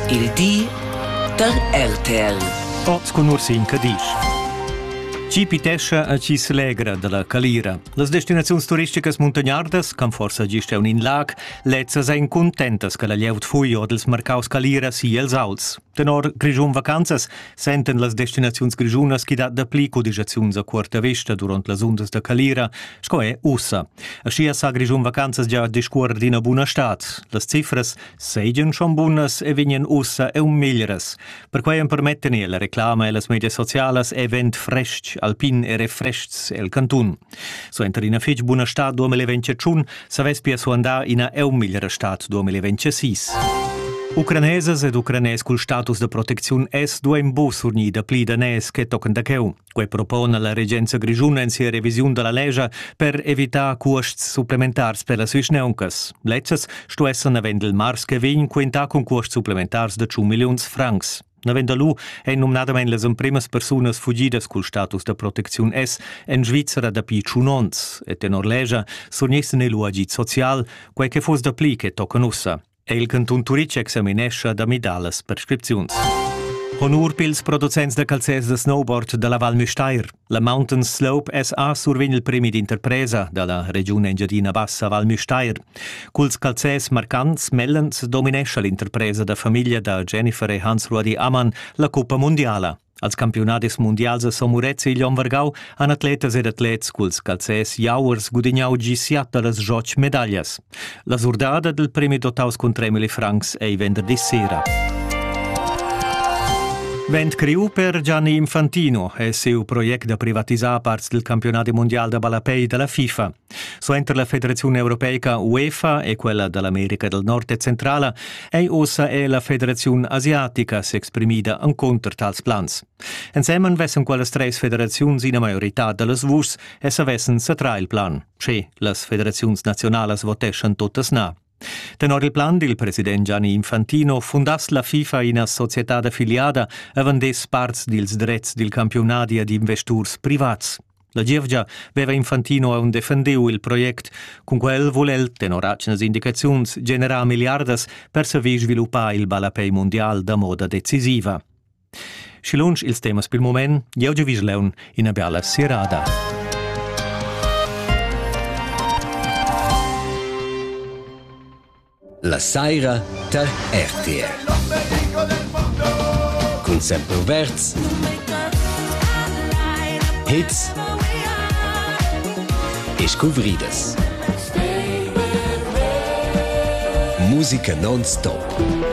Il di da RTL. Oz cun Ursin Cadisch. Chi pitescha a chi s'legra dalla calira. Las destinaziuns turisticas muntagnardas, can forsa gist un in lag, lezzas ein contentas che la glieud fui odels marcaus calira si els auls. Tenor Grischun Vacanzas senten las destinaziuns grischunas chi dat dapli cudigiaziuns a cuorta vesta duront las undas da calira sco è ussa. Aschia sa Grischun vacanzas gia discuorer d'ina buna stad. Las cifras seigien schon bunas e vegnien ussa eu meglieras. Perquei empermetten la reclama e las medias socialas event frestg, alpin e refrestgs el cantun. Suenter ina fetg buna stad 2021 savess pia suandar ina eu megliera stad 2026. Ucranesas ed ucranes cul status da protecziun es duain bu surgnida pli daners che tochen da cheu. Quei propona la regenza grischuna en sia revisiun dalla lescha per evitar cuosts supplementars per las vischneuncas. Lezzas sto esser navend il mars che vegn quentà cun cuosts supplementars de 100 milliuns francs. Navend lu ein numnadamein las empremas persunas fugidas cul status da protecziun S en Svizzera dapi tschun onns e tenor lescha surniessen ei lu agid social, quei che fuss dapli che tochen ussa. è il cantun Turitg examinescha da midar las prescripziuns. Honur pils producents da calzers da snowboard dalla Val Müstair. La Mountain Slope SA survegn il premi d'interpresa dalla regiun Engiadina Bassa Val Müstair. Culs calzers marcants mellens dominescha l'interpresa da famiglia da Jennifer e Hans-Ruadi Ammann la cuppa mundiala. Als campiunadis mundials a Somurets e igl onn vargau han atletas ed atlets culs calzers jauers gudignau gi siat da las Joch medaglias. La surdada dal premi dotaus cun 3 milli francs ei venderdi sera. Vent criu per Gianni Infantino è siu project da privatisar parts del campionati mondial da ballapei dalla FIFA. Suenter la Federaziun europeica UEFA e quella da l'America del Nord e Centrala ei ossa è la Federaziun asiatica s'exprimida encunter tals plans. Ensemen vessen quellas treis federaziuns ina maiorità dallas vuschs e savessen satrar il plan, sche las federaziuns nazionalas voteschan totas na. Tenor il plan dil president Gianni Infantino fundass la FIFA ina societad affiliada avon des parts dils dretgs dil campiunadi ad investurs privats. La gievgia veva Infantino aun defendeu il project, cun quel vul el, tenor atgnas indicaziuns, generar milliardas per saver sviluppar il ballapei mundial da moda decisiva. Schi lunsch ils temas pil mument, jeu giu vis leun ina biala sirada. La saira tar RTR. Cun sempre verts hits e scuvridas. Musica non stop.